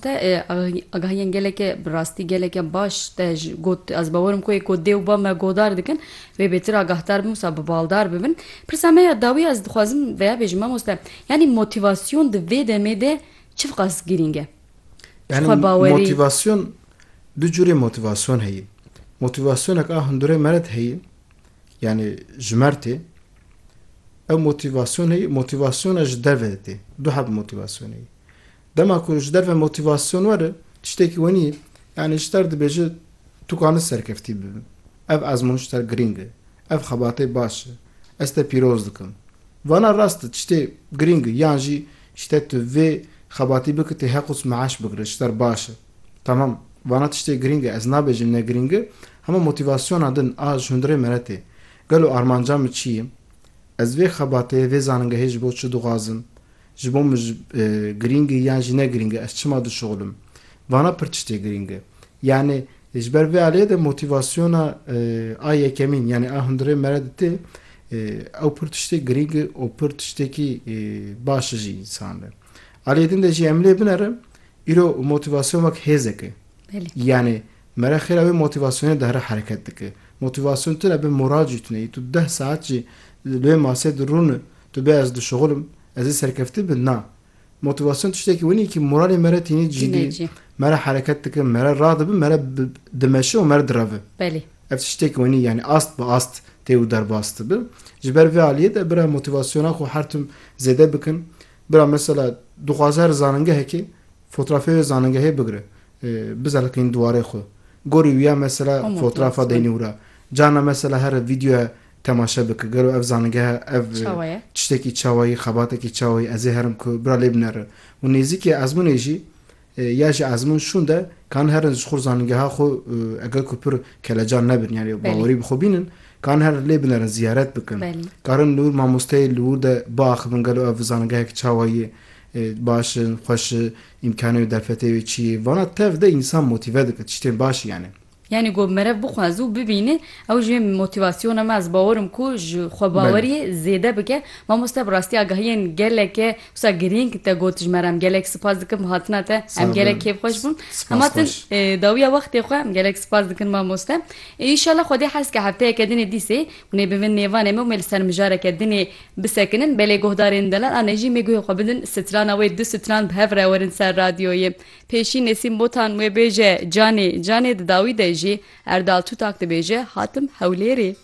Te agahiyên gelekê bi rastî gelekê baş te got. Ez bawer im ku ê ku dê û bav me guhdar dikin vê bêtir agahdar bin wisa bi baldar bibin. Pirsa me ya dawî ez dixwazim veya bêjim mamoste yanî motîvasyon di vê demê de çiqas girîng e? Ji xwe bawerî. Yanî motîvasyon du curê motîvasyon heye. Motîvasyonek a hundurê me re de heye yanî ji me re tê. Ew motîvasyon heye, motîvasyona ji derve de tê. Du heb motîvasyon heye. Dema ku ji derve motîvasyon were tiştekî wenî ye. Yanî ji ter dibêje tu kanis serkeftî bibim. Ev ezmûn ji ter girîng e. Ev xebatê baş e. Ez te pîroz dikim. Vana rast e tiştê girîng e yan jî ji te tu vê xebatî bike tu heqûs meaş bigire ji ter baş e. Tamam vana tiştê girîng e ez nabêjim ne girîng e hema motîvasyona din a ji hundirê me re tê. Gelo armanca min çi ye? Ez vê xebatê vê zaningehê ji bo çi dixwazim? Ji bo min girîng e yan jî ne girîng e, ez çima dişoxlim? Vana pir tiştê girîng e. Yanî ji ber vê aliyê de motîvasyona a yekemîn yanî a hundirê me re dite ew pir tiştê girîng e û pir tiştekî baş e ji însan re. Aliyê din de jî em lê binerin îro motîvasyon wek hêzek e. Yanî me re xêra wê motîvasyonê dihre hereket dike. Motîvasyon tune be moral jî tune. Î tu deh saet jî li wê masê de rûn Tu bê ez dişuxul im, ez ê serkeftî bin na. Motivasyon tiştekî winî kî moralê me re tînî cî dî, me re hereket dikin, me re ra dibin, me re dimeşin û me re direvin. Belê. Ev tiştekî winî yanî ast bi ast tê û derbas dibi. Ji ber vê aliyê de bira motivasyona xwe her tim zêde bikin. Bira mesela dixwaze here zanîngehekê fotrafê wê zanîngehê bigire, bizeliqîn diwarê xwe. Gorî wiya mesela fotrafa deynî wira. Carna mesela here vîdyoya Temaşe bike gelo ev zanîngeha ev Çawa ye? tiştekî çawa yî, xebatekî çawa yî, ez ê herim ku bira lê binere. Û nêzîkê ezmûnê jî ya ji ezmûn şûn de kan herin ji xur zanîngeha xwe eger ku pir kelecan nebin yanî Belê. bawerî bi xwe bînin kan herin lê binerin ziyaret bikin. Belê. Karin li wir mamosteyê li wir de biaxivin gelo ev zanîngehek çawa yî, baş in, xweş i, îmkanê wê, derfetê wê çi yê. Vana tev de însan motîve dike tiştên baş yanî. Yanî ku merev bixwaze û bibîne ew jî motîvasyona me ez bawer im ku ji xwebaweriyê zêde bike. Mamoste bi rastî agahiyên geleke wisa girîng te got ji me re em gelek sipas dikim hatina te em gelek kêf xweş bûn hema tu dawiya wextê xwe em gelek sipas dikin mamoste înşala xwedê hez ke hefteyeke dinê dîsê hûnê bibin nêvanê me û me li ser mijareke dinê bisekinin belê guhdarên delal a ne jî mê guhê xwe bidin sitrana wê du sitran bi hev re werin ser radyoyê. Pêşî Nesîm Botan wê bêje Canê, Canê di dawî de jî Erdal Tutak dibêje hatim Hewlêrê.